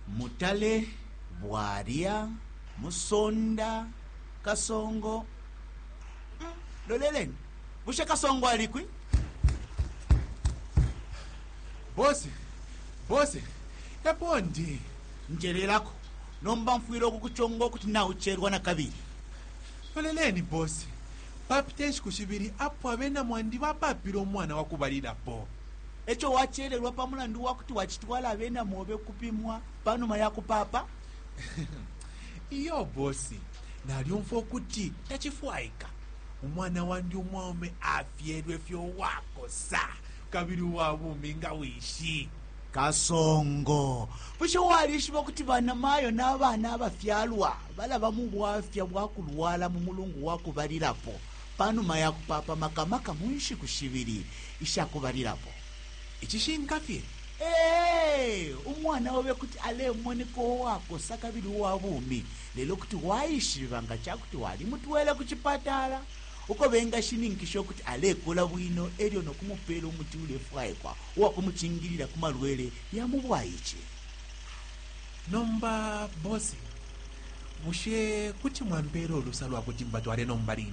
Mutale, Bwalya, Musonda, Kasongo, Loleleni, bushe Kasongo alikwi? Bose, bose, epo ndi. Njelelako, nomba mfwile ukukuchonga ukuti naucherwa na kabili. Loleleni, bose, papite nshiku shibili apo abena mwandi bapapile umwana wakubalilapo. E co wacelelwa pa mulandu wa kuti wacitwala abena mobe ukupimwa pa numa ya kupaapa? Iyo bosi, nalyumfwa ukuti tacifwaika. Umwana wandi umwaume afyelwe fye uwakosa kabili uwa bumi nga wishi. Kasongo, bushe walishiba ukuti banamayo na bana abafyalwa balaba mu bwafya bwa kulwala mu mulungu wa kubalilapo pa numa ya kupaapa, maka maka mu nshiku shibili? Ica kubalilapo, icishinka fye, ee, umwana obe kuti alemoneka uwakosa kabili uwa bumi, lelo kuti waishiba nga ca kuti walimutwele ku cipatala uko bengashininkisha ukuti alekula bwino e lyo no kumupeela umuti ulefwaikwa uwa kumucingilila ku malwele ya mu bwaice. Nomba Boss, bushe kuti mwampeela ulusa lwa kuti mbatwale nomba line?